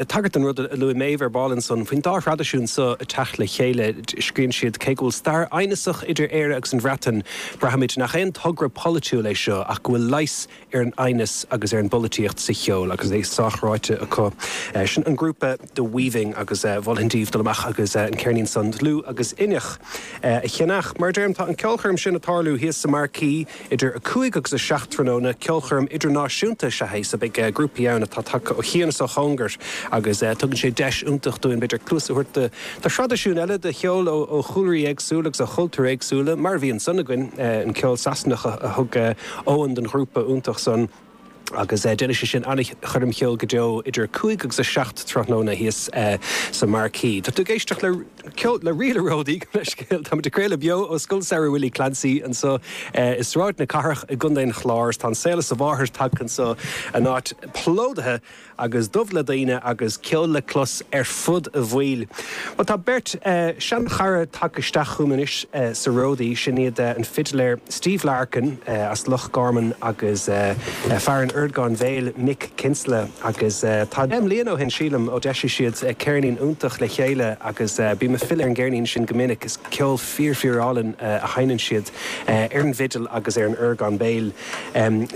Ag tagairt don rud a luaigh Méabh ar ball ansan faoin dá thraidisiún seo ag teacht le chéile, scríonn siad, Cé go bhfuil stair aighneasach idir Éire agus an Bhreatain, braithimid nach aon togra polaitiúil é seo ach go bhfuil leigheas ar an aighneas agus ar an bpolaitíocht sa cheol agus é sách ráite acu. Sin an grúpa The Weaving agus mholfainn daoibh dul amach agus an ceirnín sin, Dlúth agus Inneach, a cheannach. Mar a deirim, tá an ceolchoirm sin ag tarlú thíos sa marquee. Idir 5 agus 7 tráthnóna, ceolchoirm idirnáisiúnta is ea é so. Beidh grúpaí ann atá tagtha ó chian is ó chóngar agus tugann sé deis iontach dúinn, b'fhéidir, cluas a thabhairt do thraidisiúin eile, do cheol ó chúlraí éagsúla agus ó chultúir éagsúla, mar a bhí ansan againn, an ceol Sasanach a thug Eoin don ghrúpa iontach san. agus déanfaidh sé sin an-choirm cheoil go deo idir 5 agus 7 tráthnóna thíos sa Marquee. Tá tú ag éisteacht le Ríl an Ródaí, go bleaisceal. Táimid ag craoladh beo ó Scoil Samhraidh Willie Clancy anseo i Sráid na Cathrach i gContae an Chláir. Tá an saol is a mháthair tagtha anseo, an áit plódaithe! agus dubh le daoine agus ceol le clos ar fud an bhaill. Bhuel, tá beirt seanchara tagtha isteach chugam anois sa ródaí, sin iad an fidiléir Steve Larkin as Loch Gorman agus fear an orgáin bhéil Mick Kinsella agus tá deich mbliana ó shin sílim ó d'eisigh siad ceirnín iontach le chéile agus bím ag filleadh ar an gceirnín sin go minic, is ceol fíor fíorálainn a sheinneann siad ar an bhfidil agus ar an orgán béil.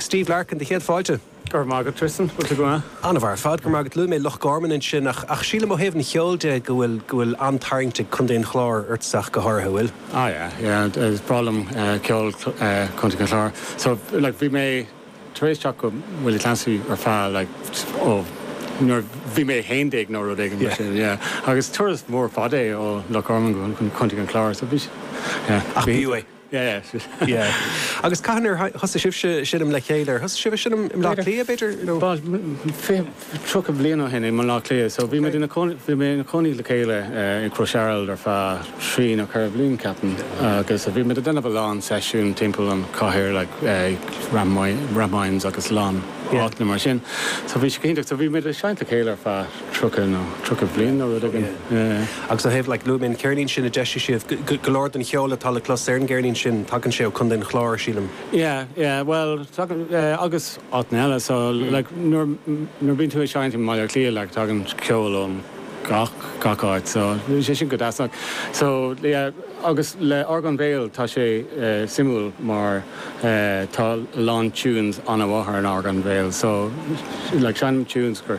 Steve Larkin, do chéad fáilte. Go raibh maith agat, Tristan. Bhfuil tú go maith? An-mhaith ar fad. Go raibh maith agat. Luaigh mé Loch Gorman ansin ach ach sílim ó thaobh an cheoil de go bhfuil go bhfuil an-tarraingt ag Contae an Chláir ortsa ach go háirithe, bhfuil? Ah yeah yeah. Is breá liom ceol Chontae an Chláir. So like bhí mé tar éis teacht go Willie Clancy ar feadh like ó nuair a bhí mé 11 nó rud éigin mar sin yeah. Agus turas mór fada é ó Loch Gorman go Contae an Chláir so bhí yeah. Ach b'fhiú é. Yeah. Agus cathain ar thosaigh sibh ag seinm le chéile? Ar thosaigh sibh a sheinm i mBleá Cliath, b'fhéidir? No. b'fhéidir, fiche, tríocha bliain ó shin i mBleá Cliath. So bhí muid ina cónaí, bhí mé ina cónaí le chéile i gCrois Araild ar feadh trí nó ceithre bhliain, ceapaim, agus bhí muid ag déanamh a lán seisiún timpeall an chathair like Rathmines agus a lán áiteanna mar sin. So bhí sé iontach. So bhí muid ag seinnt le chéile ar feadh. tríocha nó tríocha bliain nó rud éigin. Agus ó thaobh, like, luaigh mé an ceirnín sin a d'eisigh sibh, go leor den cheol atá le clos ar an gceirnín sin, tagann sé ó Chontae an Chláir, sílim. Yeah, yeah, bhuel, tagann, agus áiteanna eile, so, like, nuair, nuair a bhíonn tú ag seinnt i mBaile Átha Cliath, like, tagann ceol ó gach, gach áit, so, bíonn sé sin go deas, like, so, yeah, agus le Orgán Béil tá sé suimiúil mar tá a lán tunes an-mhaith ar an orgán béil, so, like, seinnim tunes gur.